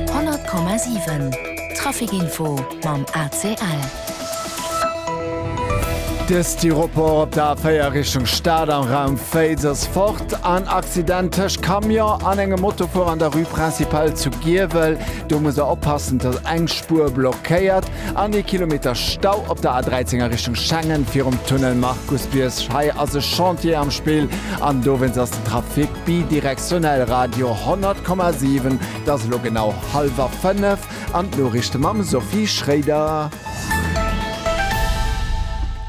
100,7 Trafic-Info mam ACL. De Styropor op der A4 Richtung Stad am Raum Féiz ass fort. En Accident tëscht Camion an engem Motofuerer an der Rue Principale zu Giewel. Do muss der oppassen, dass eng Spuer blockéiert an ee Kilometer Stau op der A13 a Richtung Schengen virum Tunnel Markus Biersch. Hei ass e Chantier am Spill an dowéinst ass den Trafic Bidirektionell Radio 100,7. Et ass elo genau hallwer fënnef an d'Noriichte mam Sophie Schroeder.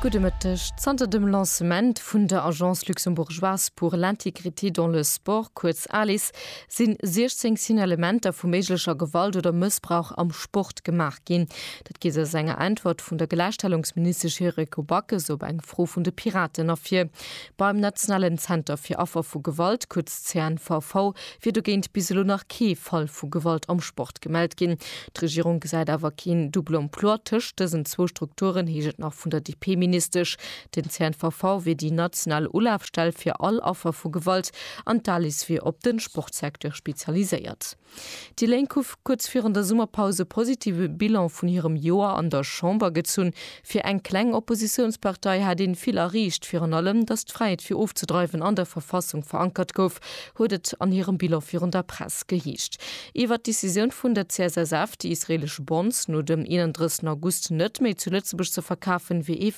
Gudde Mëtteg. Zanter dem Lancement vun der Agence luxembourgeoise pour l'intégrité dans le sport, kuerz Alis, si 16 Signalementer vu méiglecher Gewalt oder Mëssbrauch am Sport gemaach ginn. Dat geet aus enger Äntwert vun der Gläichstellungsministesch Yuriko Backes op eng Fro vun de Piraten ervir. Beim nationalen Zenter fir Affer vu Gewalt, kuerz CNVV, wier dogéint bis elo nach kee Fall vu Gewalt am Sport gemellt ginn. D'Regierung gesäit awer keen Double emploi tëscht dësen zwou Strukturen, heescht et nach vun der DP-Ministesch. Den CNVV wier déi national Ulafstell fir all Affer vu Gewalt an d'Alice wier op de Sportsecteur spezialiséiert. Déi Lénk hu kuerz virun der Summerpaus e positive Bilan vun hirem Joer an der Chamber gezunn. Fir eng kleng Oppositiounspartei hat ee vill erreecht. Virun allem, datt d'Fräiheet fir ofzedreiwen an der Verfassung verankert gouf, huet et an hirem Bilan virun der Press geheescht. Iwwer d'Decisioun vun der CSSF, déi israeelesch Bonds no dem 31 August net méi zu Lëtzebuerg ze verkafen, wier ee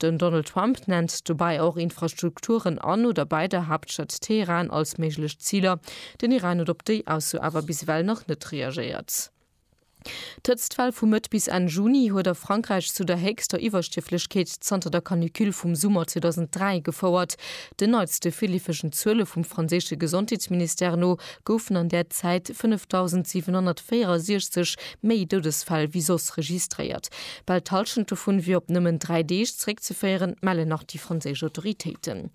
Den Donald Trump nennt dobäi och Infrastrukturen an oder bei der Haaptstad Teheran als méiglech Ziler. Den Iran huet op déi Ausso awer bis ewell nach net reagéiert. D'Hëtztwell vu Mëtt bis Enn Juni huet a Frankräich zu der héchster Iwwerstierflechkeet zanter der Canicule vum Summer 2003 gefouert. Den neitste virleefegen Zuele vum franséische Gesondheetsministère no goufen an där Zäit 5.764 méi Doudesfäll wéi soss registréiert. Bal d'Hallschent dovun wier op nëmmen dräi Deeg zeréckzeféieren, mellen nach déi franséisch Autoritéiten.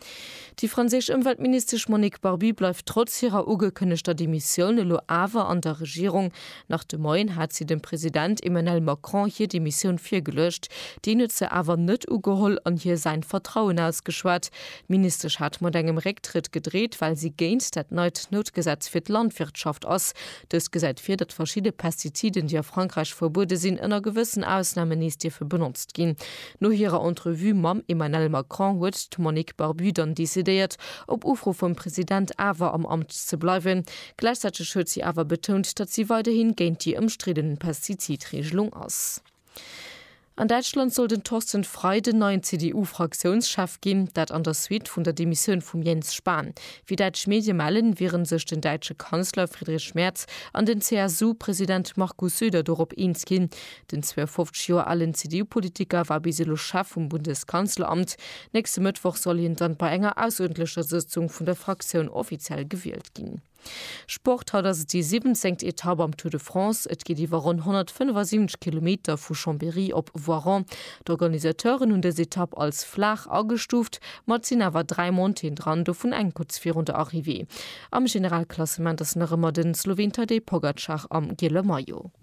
Déi franséisch Ëmweltministesch Monique Barbie bleift trotz hirer ugekënnegter Demissioun elo awer an der Regierung. Nach de Moien hat si dem President Emmanel Macron hir Demissioun virgeluecht. Deen huet se awer net ugeholl an hir säin Vertrauen ausgeschwat. D'Ministesch hat mat engem Récktrëtt gedreet, well si géint dat neit Noutgesetz fir d'Landwirtschaft ass. Dëst gesäit vir, datt verschidde Pestiziden, déi a Frankräich verbuede sinn, ënner gewëssen Ausnamen nees dierfe benotzt ginn. No hirer Entrevue mam Emmanel Macron huet d'Monique Barbu dann decidéiert, op Ufro vum President awer am Amt ze bleiwen. Gläichzäiteg huet si awer betount, datt si weiderhi géint déi ëmstridden Pestizidreegelung ass. An Däitschland soll den Thorsten Frei den neien CDU-Fraktiounschef ginn, dat an der Suite vun der Demissioun vum Jens Spahn. Wéi däitsch Medie mellen, wiere sech den däitsche Kanzler Friedrich Merz an den CSU-President Markus Söder dorop eens ginn. Den 52 Joer alen CDU-Politiker war bis elo Chef vum Bundeskanzleramt. Nächste Mëttwoch soll hien dann bei enger aussuertentlecher Sëtzung vun der Fraktioun offiziell gewielt ginn. gestart ginn. Sport, Haut ass et déi siwwenzéngt Etapp am Tour de France. Et geet iwwer ronn 175 Kilometer vu Chambéry op Voiron. D'Organisateuren hunn dës Etapp als flaach agestuuft, ma et sinn awer dräi Montéen dran, dovun eng kuerz virun der Arrivée. Am Generalklassement ass nach ëmmer de Sloween Tadej Pogacar am giele Maillot.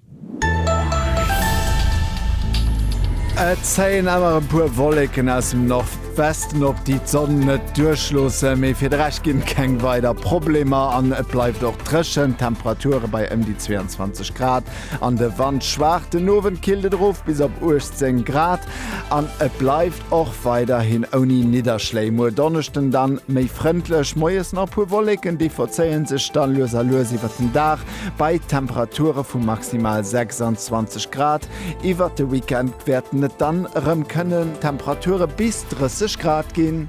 Et zéien awer e puer Wolleken aus dem Nordwesten op, déi d'Sonn net duerchloossen. Mee fir de Rescht ginn et keng weider Problemer an et bleift och dréchen. D'Temperature bei ëm déi 22 Grad an de Wand schwaach. Den Owend killt et erof bis op 18 Grad an et bleift och weiderhin ouni Nidderschléi. Muer Donneschden dann méi frëndlech, moies nach e puer Wolleken, déi verzéie sech da lues a lues iwwert den Dag. bei Temperature vu maximal 26 Grad. Iwwert de Weekend wäerten et dann erëm kënnen Temperature bis 30 Grad ginn.